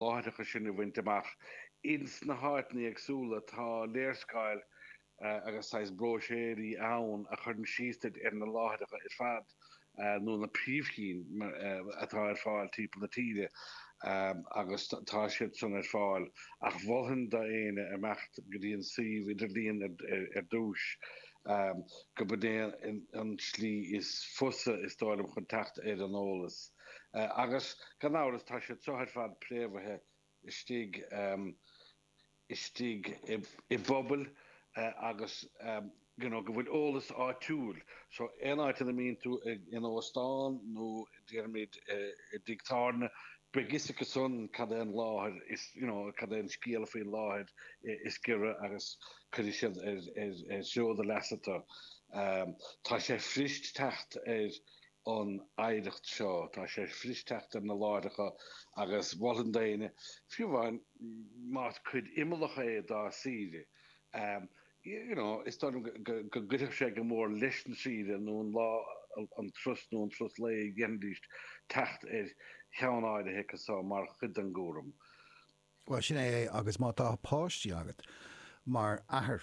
láithreacha sin a bhaint amach. Ins na háiteanna éagsúla tá léarscáil agus saghas bróiséirí ann a chuireann síos duit ar na láithreacha ar fad nó na príomhchinn atá ar fáil timpeall na tíre agus tá siad san ar fáil ach mholfainn do éinne imeacht go dtí an suíomh idirlíon ar dtúis gurb in é an slí is fusa is dóigh liom chun teacht ar an eolas. Agus gan amhras tá siad seo ar fad préamhaithe istigh istigh i bpobail agus you know go bhfuil eolas áitiúil so aon áit ina mbíonn tú ag in óstán nó déarfaimid i dtigh tábhairne beidh fhios acu san cad é an láthair is you know cad é an scéala faoin láthair is giorra agus cuirfidh siad ar ar bhóthar do leasa tú. Tá sé fuirist teacht ar an oidhreacht seo. Tá sé fuirist teacht ar na láithreacha agus mholfainn d'éinne, fiú amháin más cuid imeallach é dá saoire, you know, is dóigh liom go gcuirfeadh sé go mór leis an saoire nó an lá, an turas nó an turas lae a dhéanfaidís, teacht ar cheann áirithe acu seo mar chuid den gcúram. Bhuel, sin é é agus má tá páistí agat, mar athair,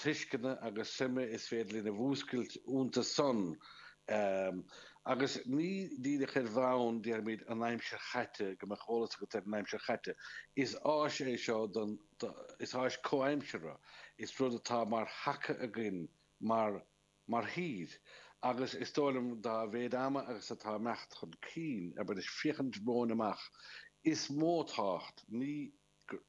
tuisceana agus suime is féidir linn a mhúscailt iontu san. Agus ní díreach ar bhonn, déarfaimid, an aimsir chaite, go mbeadh eolas agat ar an aimsir chaite. Is áis é seo don, is áis comhaimseartha, is rud atá mar thaca againn mar, mar thír. Agus is dóigh liom, dá mhéid ama agus atá imeacht chun cinn, a bheith ag féachaint romhainn amach, is mó tábhacht, ní, gur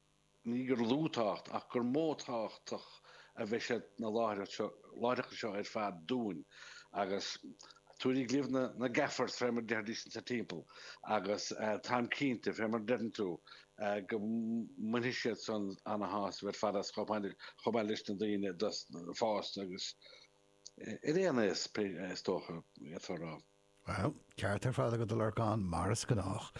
ní gur lú tábhacht ach gur mó tábhacht a bheidh ag na láithreacha seo ar fad dúinn agus tugaigí libh na garlaigh fé mar deir Decent sa timpeall agus táim cinnte fé mar deireann tú go mbainfidh siad san an-shásamh ar fad as chomh maith leis na daoine fásta agus ar aon nós is dócha atá a rá. Bhuel, ceart ar fad agat, a Lorcán, mar is gnách.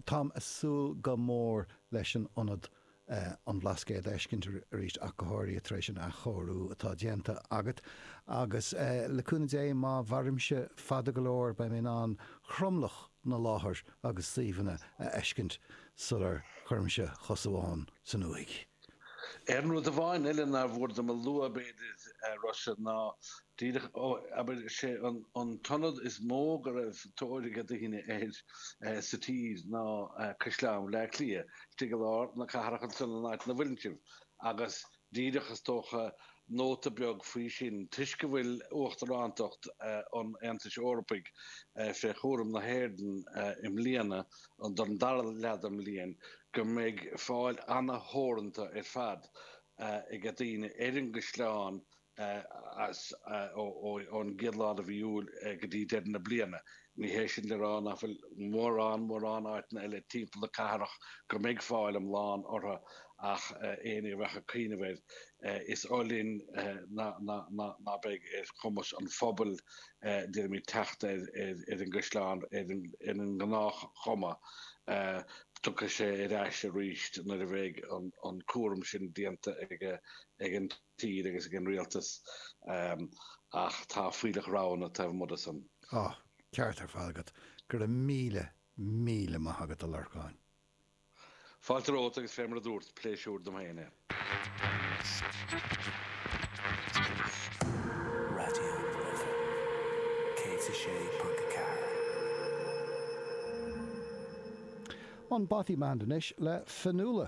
Táim ag súil go mór leis an ionad an Bhlascaoid a fheiscint arís ach go háirithe tar éis an athchóiriú atá déanta agat. Agus le cúnamh Dé, má mhairimse fada go leor, beidh mé in ann tromlach na láithreacha agus suíomhanna a fheiscint sula gcuirimse cos amháin san uaigh. Aon rud amháin eile nár mhór dom a lua, b'fhéidir, a Rossa, ná díreach, ó, abair, sé an t-ionad is mó go raibh tóir ag daoine air sa tír ná Caisleán Bhaile Átha Cliath, istigh i lár na cathrach ansan in áit na bhfoirgneamh rialtais, agus díreach, is dócha, nóta beag faoi sin toisc go bhfuil Uachtarántacht an Aontais Eorpaigh fé chúram na hÉireann i mbliana, don dara leath den bhliain. go mbeidh fáil an-theoranta ar fad ag daoine ar an gcaisleán as ón gcéad lá de mhí Iúil go dtí deireadh na bliana. Ní hé sin le rá nach bhfuil mórán mórán áiteanna eile timpeall na cathrach go mbeidh fáil iomlán orthu ach éinne a bheadh ag cuimhneamh air, is oth linn ná beidh ar chumas an phobail dhéanamh teacht ar an gcaisleán ar an ngnáthchuma, tiocfaidh sé ar ais arís nuair a bheidh an cúram sin déanta ag an tír agus ag an rialtas, ach tá fuílleach roghanna taobh amuigh de san. Tá. Ceart ar fad agat. Go raibh míle, míle maith agat, a Lorcáin. Fáilte romhat agus fé mar a dúrt, pléisiúr dom féin é. Raidió na Life 106.4. An Bothy Band anois le Fionnuala.